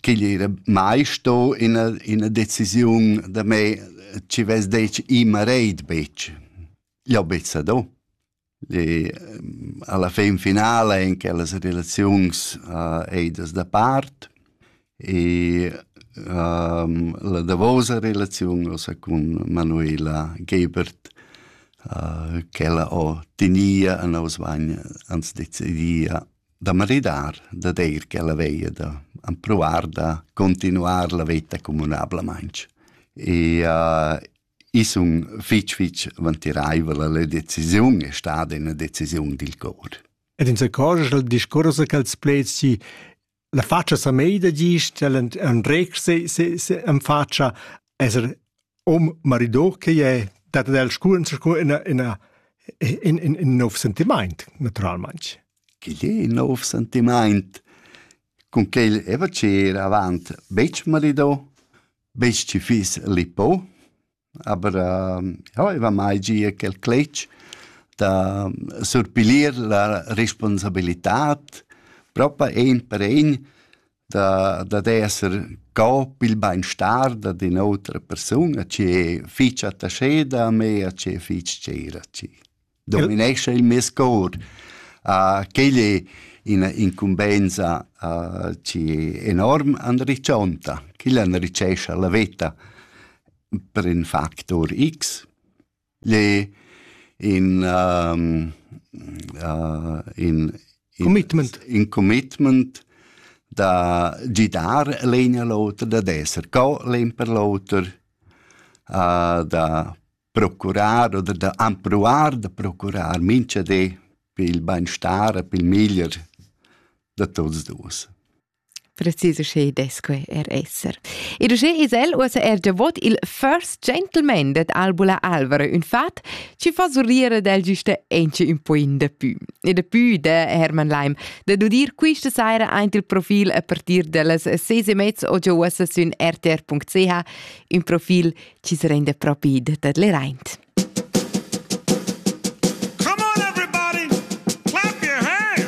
ch'igl era mai sto ina, ina decisiun da me ci vess detg i mareid betg. Jau bezza do. E, alla fin finala en quellas relaziuns uh, eidas da part e um, la davosa relaziun ossa cun Manuela Gebert uh, ch'ella ho tinia a nos vagn ans decidia da maridar, da deir ch'ella veia da ampruar da continuar la veta communablamaintg. E uh, i sun fitg fitg vantiraivel la decisiun è stada una decisiun dil cor. Ed in se cosa il discorso che els plezi la faccia sa meida gist, el en rex se se se en faccia esser hom marido che è dat el scuren sco ina ina in in in nov sentiment naturalmente che è in nov sentiment con che il eva c'era avant bec marido bec ci fis lipo aber ja eva mai gia quel cletg da surpilir la responsabilitad propa ein per ein da, da esser co pil beinstar da d'in'otra persuna che fitg attaché da me a che fitg tgira ci dominesce il mes cor a quelle in incumbenza uh, ci enorm andriccionta, chi l'andricesce la veta per in factor X le in um, uh, in, in commitment in commitment da gidar l'eina l'otra da d'esser co l'imper l'oter uh, da procurar oder da ampruar da procurar mincha de per il beinstar per il miglier da tots dus Precis uschè dess que er esser. Ed uschè es el uossa er davot il First Gentleman dad Albula Alvaro, ün fat chi fa surrir del güsta enche ün po in dapü. E dapü da Hermann Leim da dudir quista saira aint il profil a partir dellas ses e mezz o già uossa sün rtr.ch, ün profil chi se renda propi det le raint.